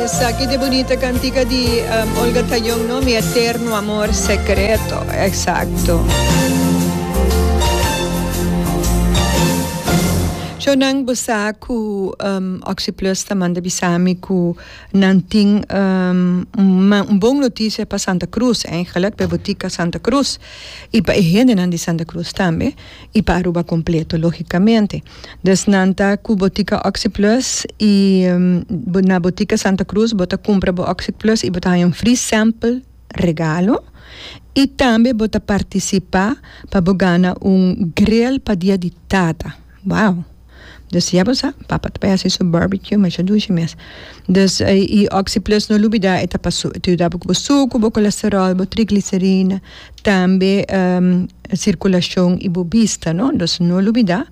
Esaki ta e bunita cantica di Olga Tañón no, Mi eterno amor secreto, exacto. Cho nan bo sa cu Oxyplus ta manda bisa mi cu nan tin un bon noticia pa Santa Cruz, eigenlijk pa e botica Santa Cruz y pa e hendenan di Santa Cruz tambe. Y pa Aruba completo logicamente. Des nan ta cu Botica Oxyplus y na Botica Santa Cruz bo ta cumpra bo Oxyplus y bo ta haya un free sample regalo y tambe bo ta participa pa bo gana un grill pa dia di tata. Wow! Dus ya bo sa, papa ta bay haci su barbecue masha dushi mes. Dus y oxyplus no lubida e ta pa su, e ta yuda bo cu bo sucu, bo colesterol, bo triglicerina, tambe circulacion y bo bista no, dus no lubida.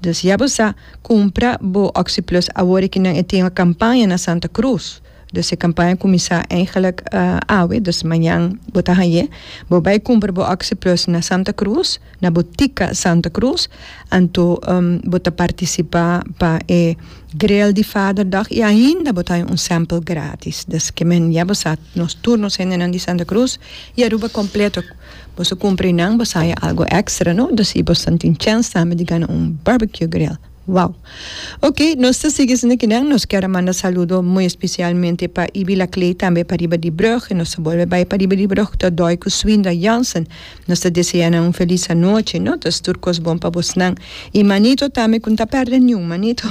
Dus ya bo sa, cumpra bo oxyplus awor e kinan e tin a campaña na Santa Cruz. Dus e kampaña kuminsá eigenlijk awe, dus mañan bo ta hañ'é. Bo bai kumpra bo OxyPlus na Santa Cruz, na bo tika Santa Cruz, anto bo ta partisipá pa e Grill di Vaderdag i ainda bo ta haña un sample grátis. Dus ke men ya bo sa, nos tur nos hendenan di Santa Cruz i Aruba kompleto bo su kumpra einan bo sa haña algu èkstra, no? Dus i bo sa tin chèns tambe di gana un barbecue grill. Wow. Ok, nos ta sigui esnan ki nan. Nos kier a manda saludo muy especialmente pa Ibila Clay tambe pa riba di brug. Nos ta bolbe bay pa riba di brug ta doy cu Swindra Jansen. Nos ta desea nan un feliz anochi, no? Nos tur cos bon pa bosnan. Y Manito tambe cu n'ta perde ni un manito.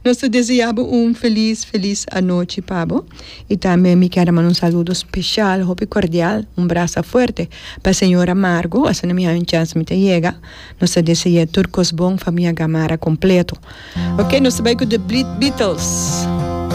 Nos ta desea bo un feliz, feliz anochi pa bo. Y tambe mi kier a manda un saludo special, hopi cordial, un brasa fuerte pa Señora Margo. Asina mi haña un chance mi ta yega. Nos ta desea tur kos bon famia Gamarra kompleto. Ok, nos ta bai ku The Beatles.